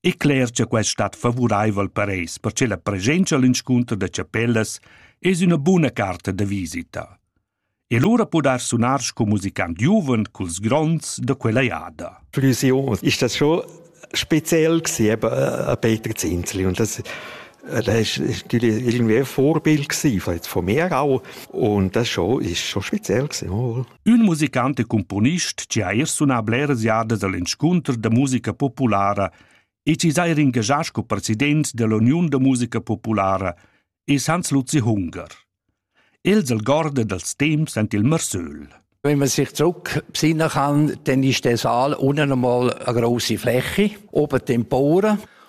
e cler cha quest stat favuraivel per eis perche la presenzcha al inscunter da chapellas es üna buna carta da visita. E lura podar sunar sco musicant giuven culs gronds da quella jada. Fusion ist das schon speziell gewesen, eben äh, Peter Zinzli. Und das das war natürlich irgendwie ein Vorbild von jetzt von mir auch. Und das schon, ist schon speziell gewesen. Ün musicant e cumponist chi ha eir sunà bleras jadas al inscunter da musica populara e chi s'ha eir ingagià sco president dell'Uniun da musica populara es Hans Luzi Hunger. Els algorda dals temps ant il Marsöl. Wenn man sich zurückbesinnen kann, dann ist der Saal unten einmal eine grosse Fläche, oben Tempore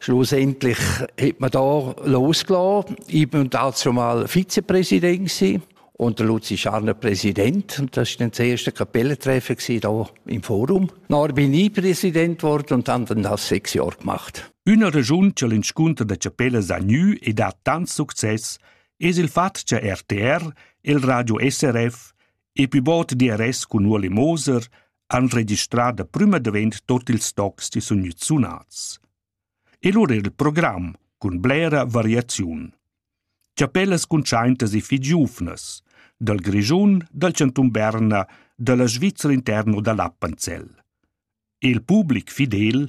Schlussendlich hat man da losgelassen. Ich war dazu mal Vizepräsident und der Luzi Scharner Präsident. Und das war dann das erste Kapellentreffen hier im Forum. Dann bin ich Präsident geworden und habe dann das sechs Jahre gemacht. Üna regiun che l'inscunter da chapellas ha gnü e dat tant success es il fat cha RTR, il Radio SRF e pü bod DRS cun Ueli Moser han registrà da prüma davent tot ils tocs chi sun gnüts sunats. E lura il program cun blera variaziun. Chapellas cuntschaintas e fich giuvnas, dal Grischun, dal Chantun Berna, dalla Svizra interno da l'Appenzell. Il public fidel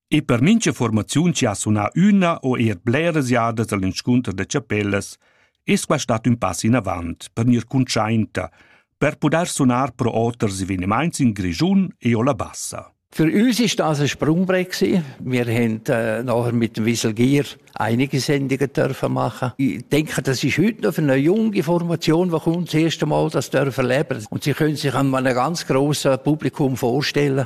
E per mincha formaziun chi ha sunà üna o eir bleras jadas al inscunter da chapellas es quai stat ün pass inavant per gnir cuntschainta, per pudair sunar pro oters evenimaints in Grischun e o la Bassa. Für uns ist das ein Sprungbrett gewesen. Wir haben äh, nachher mit dem Wieselgier einige Sendungen dürfen machen. Ich denke, das ist heute noch für eine junge Formation, die kommt, das erste Mal das dürfen leben. Und sie können sich einem einem ganz grossen Publikum vorstellen.